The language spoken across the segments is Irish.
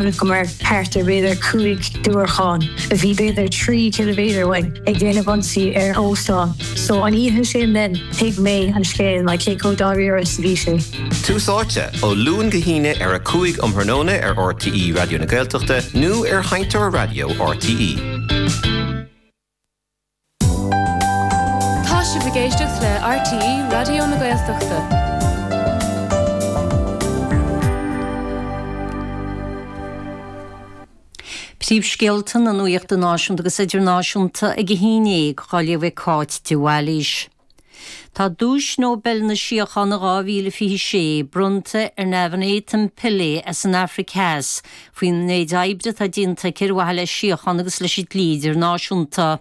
go mbeadh thart ar b'fhéidir cúig diúrachán, a bhí b'fhéidir trí ciliméadar uainn, ag déanamh ionsaí ar óstán. So an oíche sin then, thuig mé an scéal, like cé chomh dáiríre is a bhí sé. Tús Áite, ó Luan go hAoine ar a 5 um thráthnóna ar RTÉ Raidió na Gaeltachta nó ar sheinnteoir raidió RTÉ. Tá sibh ag éisteacht le RTÉ Raidió na Gaeltachta. Príomhscéalta na nuachta náisiúnta agus idirnáisiúnta ag a haon déag, dhá léamh ag Cáit de Bhailís. Tá Duais Nobel na Síochána 2026 bronnta ar Navanethem Pillay as an Afraic Theas faoin méid oibre atá déanta aici ar mhaithe le síocháin agus leis an dlí idirnáisiúnta.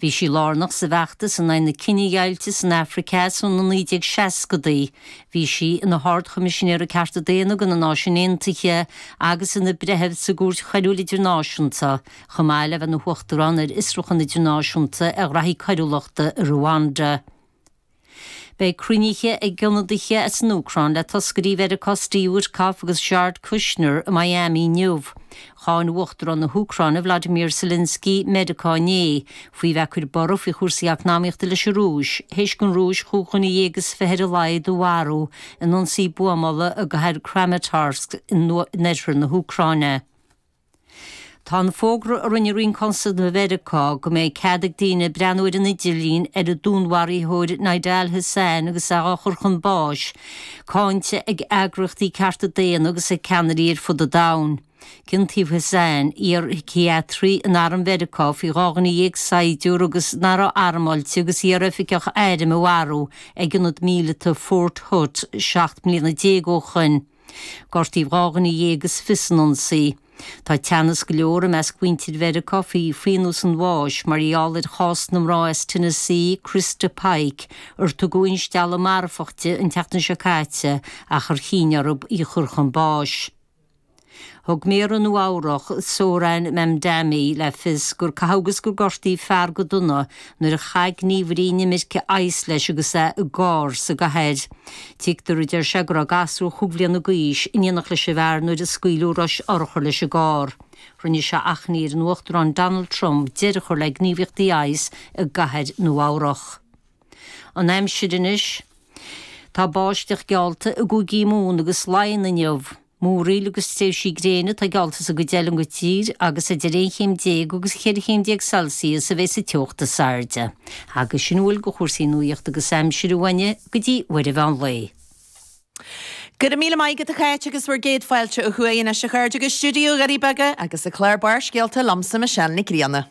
Bhí sí lárnach sa bhfeachtas in aghaidh na cinedheighilte san Afraic Theas ó na 1960idí. Bhí sí ina hArd-Choimisinéir ar Chearta Daonna ag na Náisiúin Aontaithe agus ina breitheamh sa gCúirt Choiriúil Idirnáisiúnta. chomh maith le bheith ina hUachtarán ar Fhiosrúchan Idirnáisiúnta ar Ghnóthaí Coiriúlachta i Ruanda. Beidh cruinniú ag ionadaithe as an Úcráin le toscairí Mheiriceá Steve Witkoff agus Jared Kushner i Miami inniu. Cháin Uachtarán na hÚcráine Vladimir Zelensky Meiriceá inné faoi bheith ag cur borradh faoi chúrsaí eacnamaíochta leis an Rúis, théis don Rúis chúig dhuine dhéag is fiche ar a laghad a mharú in ionsaí buamála i gcathair Kramatorsk in oirthear na hÚcráine. Tá an fógra a rinne Roinn Cosanta Mheiriceá go mbeidh cead ag daoine breathnú ar an idirlíon ar an dúnmharaítheoir Nidal Hasan agus é dhá chur chun báis, cáinte ag eagraíochtaí cearta daonna agus ag ceannairí ar fud an domhain. Ciontaíodh Hasan, iarshíciatraí in arm Mheiriceá, faoi dhá dhuine dhéag saighdiúirí nach raibh armáilte agus iar-oifigeach airm a mharú ag ionad míleata Fort Hood seacht mbliana déag ó shoin. Gortaíodh dhá dhuine dhéag is fiche san ionsaí. Tá teannas go leor i measc mhuintir Mheiriceá faoi phionós an bháis mar gheall ar chás na mná as Tennessee, Christa Pike, ar tugadh instealladh marfach di an tseachtain seo caite ach ar chinn orthu í a chur chun báis. Thug Méara Nua Eabhrach, Zohran Mamdani le fios gur caitheadh agus gur gortaíodh fear go dona nuair a chaith gníomhairí inimirce ICE leis agus é i gcarr sa gcathair. Tuigtear a deir sé go raibh gasúr chúig bliana d'aois in éineacht leis an bhfear nuair a scaoileadh rois urchar leis an gcarr. Rinne sé achainí ar an Uachtarán Donald Trump deireadh a chur le gníomhaíochtaí ICE i gCathair Nua Eabhrach. An Aimsir anois. Tá báisteach geallta i gCúigí Mumhan agus Laighean inniu. Múraíl agus tréimhsí gréine atá geallta sa gcuid eile den tír agus idir aon chéim déag agus ceithre chéim déag Celsius a bheidh sa teocht is airde. Agus sin uilig ó chúrsaí nuaíochta agus aimsire uainne go dtí uair an mheán lae. Go raibh míle maith agat a Cháit agus bhur gcéad fáilte ó thuaidh anois a chairde go Stiúideo Dhoirí Beaga agus an clár Barrscéalta liomsa Michelle Nic Grianna.